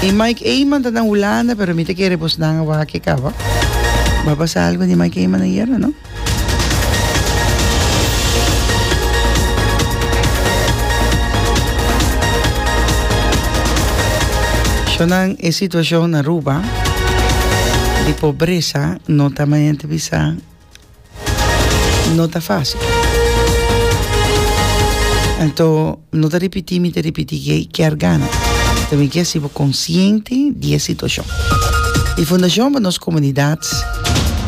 E Mike Eman ta na Hulanda, pero mi te kere bos nan a wak e kaba. Ba pasa algo di Mike Eman ayera, no? Shonan e situacion na Aruba di pobresa no ta manera ta bisa no ta fácil. Anto no ta repetí mi ta repetí ke kier gana. Ta mi ke si bo consciente di e situacion. E fundacion pa nos comunidad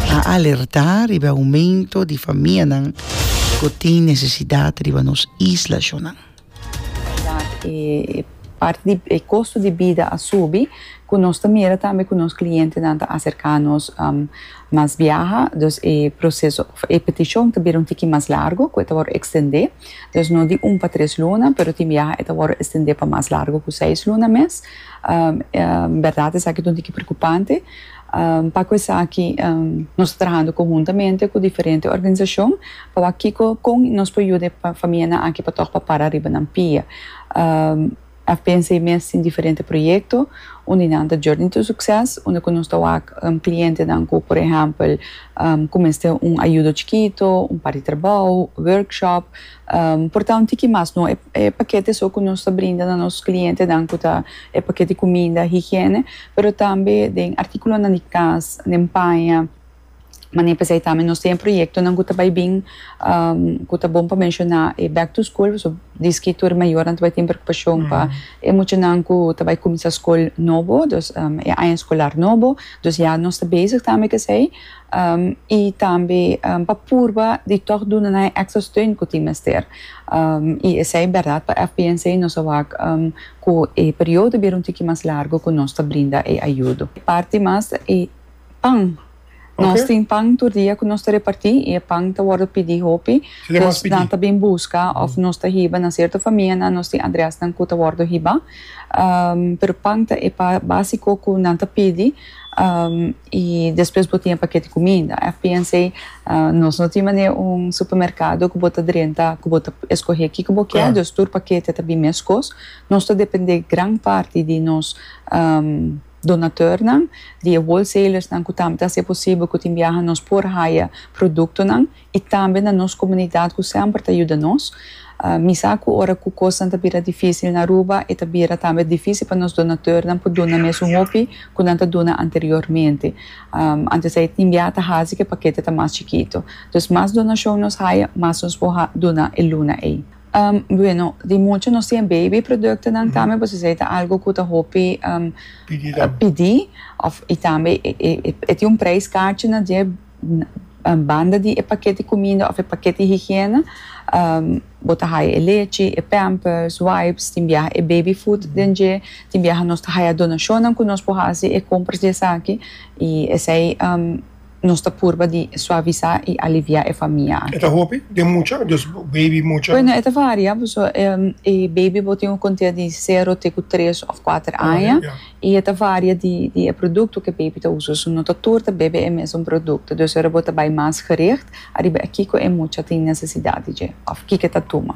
a alertá riba e aumento di famianan cu tin necesidad riba nos islacionan. Kantidad e parti di e kosto di bida a subi ku nos ta mira tambe ku nos klientenan ta aserká nos mas biaha, dus e proseso òf e petishon ta bira un tiki mas largu ku e ta wòrdu ekstendé, dus no di un pa tres luna pero tin biaha e ta wòrdu estendé pa mas largu ku seis luna mes. Bèrdat esaki ta un tiki preokupante. Pa cu esaki nos ta trahando conhuntamente cu diferente organisacion pa wak kico, con y nos por yuda e famianan aki pa toc pa para riba nan pia. A pensa e mes tin diferente proyecto unda nan ta journey to succes, unda cu nos ta wak clientenan cu por ehempel cu mester un ayudo chikito, un par di trabou, workshop, Por ta un tiki mas no e pakete so ku nos ta brinda na nos klientenan ku ta e pakete kuminda, higiene, pero tambe den artíkulonan di kas, den paña, manera p'esei tambe nos tin e proyektonan ku ta bai bin, ku ta bon pa menshoná e back to school, paso diski tur e mayornan ta bai tin preokupashon pa e muchanan ku ta bai kuminsá skol nobo, dus e aña skolar nobo, dus ya nos ta bezig tambe ku esei. i tambe pa purba di tòg duna nan e èkstra steun ku tin mester. I esei bèrdat pa FPNC, nos a wak ku e periodo bira un tiki mas largu ku nos ta brinda e ayudo. Parti mas e pan. Nos tin pan tur dia ku nos ta repartí i e pan ta wòrdu pidi hopi, dus nan ta bin buska òf nos ta hiba na sierto famianan, nos tin adrèsnan ku ta wòrdu hibá, pero pan ta e básiko ku nan ta pidi. y despues bo tin e pakete cu minda. FPNC, Nos no tin mane un supermercado cu bo ta drenta cu bo ta escoge kico bo kier, dus tur pakete ta bin mes cos. Nos ta depende gran parti di nos donateurnan, di e wholesalers nan cu tambe ta haci e posible cu tin biaha nos por haya productonan i tambe na nos komunidat ku semper ta yuda nos. Mi sa ku ora ku kosnan ta bira difísil na Aruba e ta bira tambe difísil pa nos donatòrnan por duna mes un hopi ku nan ta duna anteriormente. Antes ei tin bia ta hasi ku e pakete ta mas chikitu. Dus mas donashon nos haya, mas nos por duna e luna ei. Bueno, di mucha nos tin e baby produktonan tambe pasobra esei ta algu ku ta hopi pidí òf i tambe e tin un preis karchi na dje. banda di e paketi kuminda òf e paketi higiena, bo ta haya e lechi, e pampers, wipes, tin biaha e baby food den dje, tin biaha nos ta haya donashonnan ku nos por hasi e kompras di esaki i esei nos ta purba di suavisá i aliviá e famia aki. E ta hopi? Den mucha o just baby mucha? Bueno, e ta varia, pasobra e baby bo tin un kontea di sero te ku tres òf kuater aña. y e ta varia di di e producto ke baby ta usa, so no ta tur ta bebe e mesun producto, dus ora bo ta bai mas gericht ariba e kiko e mucha tin necesidad di dje of kiko e ta tuma.